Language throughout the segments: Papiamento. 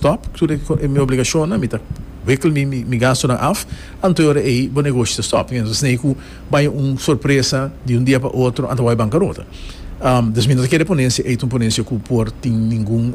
Top, tur e mi obligashonnan, mi ta wikkel mi mi gastunan af, anto e ora ei bo negoshi ta stop, mi ta snei ku bai un sorpresa di un dia pa otro a ta wòrdu bankarota. Dus mi no ta kere ponencia ei ta un ponencia ku por tin ningun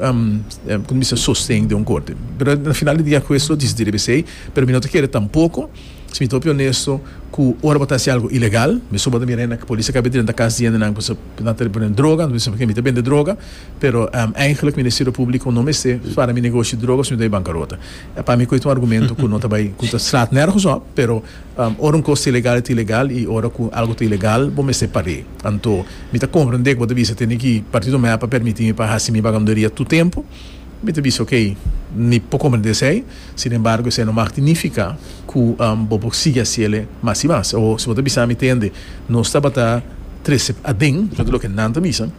sosten den un korte. Pero na final di dia akes lo disidi rebesei, pero mi no ta kere tampoko. Si mi ta hopi onesto cu ora bo ta haci algo ilegal, mi suba ta mira hende nan cu policia caba drinta cas di hende nan cu nan ta repone droga, mi ta bisa mi ta bende droga, pero eigenlijk Ministerio Publico no mester spara mi negoshi droga sino mi ta bay bancarota. Pa mi coy ta un argumento cu no ta bay, cu ta slaat nergens op, pero ora un cos ta ilegal ta ilegal y ora cu algo ta ilegal bo mester par'e. Anto mi ta comprende cu bo ta bisa tene cu Partido Mea pa permiti mi pa haci mi vagabunderia tur tempo. Mi ta bisa ok, mi por comprende esey, sin embargo esey no mag significa cu bo por sigui haciele mas y mas. O si bo ta bisa mi te hende, nos tabata trece aden, eso ta loke nan ta bisa,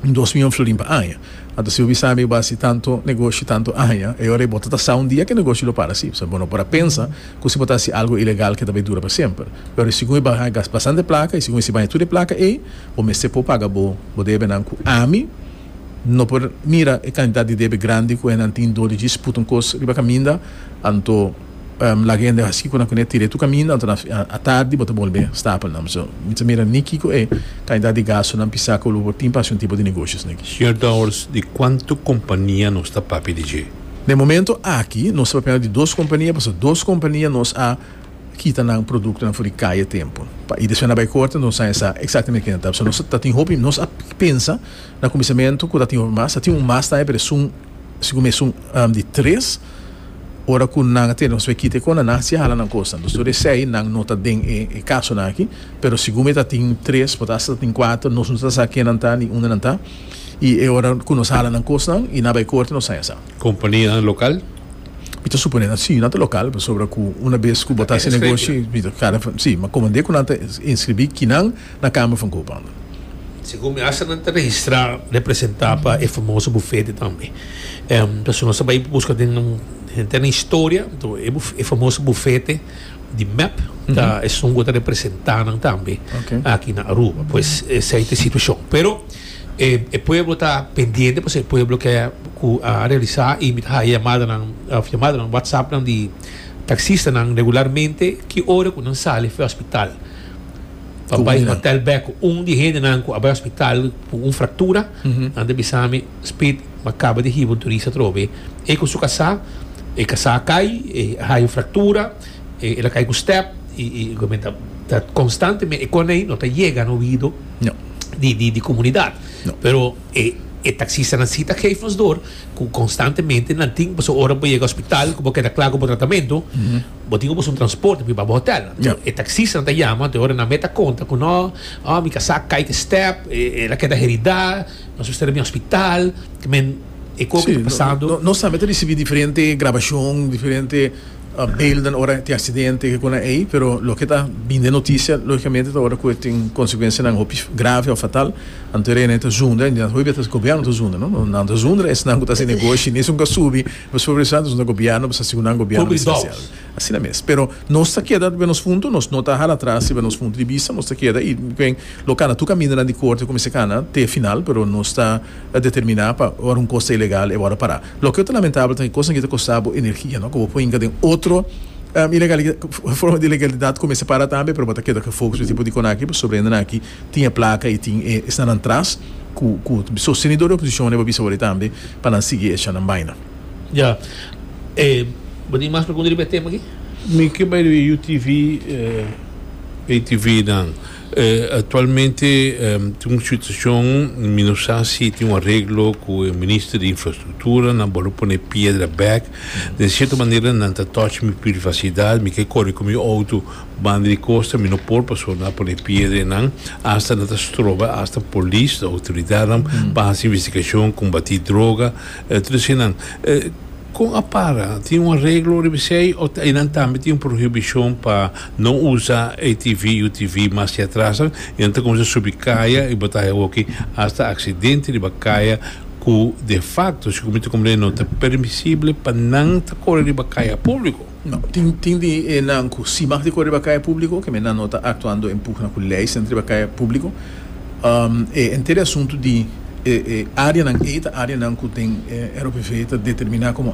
dos miyon florin pa aña. Anto si bo bisa mi bo a haci tanto negoshi tanto aña, e ora y bo ta tasa un dia cu e negoshi lo para así. Bo no por a pensa cu si bo ta haci algo ilegal cu e ta bay dura pa semper. E ora y segun e bay haña bastante placa y segun e si baña tur e placa ey, bo mester por paga bo debenan cu ami, No por mira e kantidat di debe grandi ku hendenan tin dor di djis puta un kos riba kaminda, anto laga e hende hasi ku nan kuné tira e tur kaminda, anto nan a tardi bo ta bolbe stapel nan. So, mi ta mira ni kiko e kantidat di gasto nan pisá ku lo por tin pa hasi un tipo di negoshonan aki. Señor Dowers, di kuantu kompania nos ta papia di dje? Den momento aki nos ta papiando di dos kompania, pasobra dos kompania nos a kita nan produktonan for di kai e tempu, pa i despues nan bai korta, nos a haña sa eksaktamente kinan ta. So nos ta tin hopi, nos a pensa. Na kuminsamentu ku ta tin hopi mas, ta tin un mas tambe, pero esun sigun mi esun di tres. Ora ku nan a tene nos bai kita e kona, nan hasi hala nan kosnan. Entonces tur esei nan no ta den e kasonan aki, pero sigun mi ta tin tres, por ta hasta ta tin kuater, nos no ta sa ken nan ta ni unda nan ta, i e ora ku nos hala nan kosnan i nan bai korte nos haña sa. Kompanianan lokal? Mi ta suponé nan si, nan ta lokal, pasobra ku una bes ku bo ta hasi negoshi, si, mi ta kara, si, ma komand'é ku nan ta inskribí kinan. na Kamer van Koophandel. Segun mi asta nan ta registrá representá pa e famoso bufete tambe. Pasobra nos ta bai buska den un henter na historia, to e buf e famoso bufete di mep ta esun ku ta representá nan tambe aki na Aruba. Pues esei ta e situashon. Pero e e pueblo ta pendiente pasobra e pueblo ke ku a realisá i mi ta haña yamadanan òf yamadanan whatsappnan di taksistanan regularmente ki ora ku nan sali for hospital. Papá is hotel bek ku un di hendenan ku a bai hospital ku un fraktura. Nan ta bisa mi, Speed, mi a kaba di hiba un turista atrobe. E ku su kasá, e kasá a kai, e haña un fraktura, el a kai ku stèp, i mi ta konstantemente, e kosnan ei no ta yega na oido di komunidat. Pero e taksistanan si ta geef nos dor ku konstantemente nan tin, pasobra ora bo yega hospital ku bo keda kla ku bo tratamentu, Bo tin oboso un transporte pa biba bo hotel. Enton e taxista nan ta yama, te ora nan mei ta konta ku no, oh, mi ka sa kai ku e step, el a keda heridá, nos mester bin hospital, ke men e koe ku ta pasando. Nos tambe ta risibí diferente grabashon, diferente belden ora tin aksidente, ke konan'e ei, pero loke ta bin den notisia, lógikamente ta ora ku e tin konsekuensianan hopi grave òf fatal, anto e rei nan e ta zunda, hopi biba ta gobierno ta zunda, no? Nan ta zunda, esnan ku ta hasi negoshi, ni esun ku a subi. Nos pone pensá, nos na gobièrnu pa sa sicundo nan gobièrnu esencial. Asina mes. Pero nos ta keda riba nos punto, nos no ta hala atras riba nos punto di bista, nos ta keda i ben lo cana tur camindanan di corte cuminsa cana te final, pero nos ta determiná pa ora un cos ta ilegal e wòrdu pará. Loke lo ta lamentabel ta e cosnan aki ta costá bo energia, no? Cu bo por hinca den otro ilegalidad, forma di ilegalidad cuminsa para tambe, pero bo ta keda cu e focus pa e tipo di conaki, pasobra hendenan aki. tin e placa y tin e esnanan tras cu cu sostenedor de oposicion e bo bisa worde tambe pa nan sigui echa nan baina. Ya. E bo tin mas pregunta riba e tema aki? Mi ke bai riba e UTV, pay TV nan. Actualmente tin un situacion, mi no sa si tin un areglo cu e minister di infrastructura, nan bolo pone piedra bek. Den cierto manera nan ta touch mi privacidad, mi ke corre cu mi auto Banda di costa mi no por paso na pone piedra enan hasta nan ta stroba hasta polis o autoridadnan pa haci investigacion, combati droga e tur esquinan. Con a para? Tin un areglo riba esey o enan tambe tin un prohibicion pa no usa ATV, UTV mas di atrasnan y nan ta cuminsa subi caya y bota awoki hasta accidente riba caya cu defacto segun mi ta comprende no ta permisible pa nan ta core riba caya publico. No, tin tin di e nan ku si mag di kor riba kaya públiko, keme nan no ta aktuando en pugna ku lei senter riba kaya públiko. E enter e asuntu di e áreanan ei ta áreanan ku den e ROPV ta determiná komo.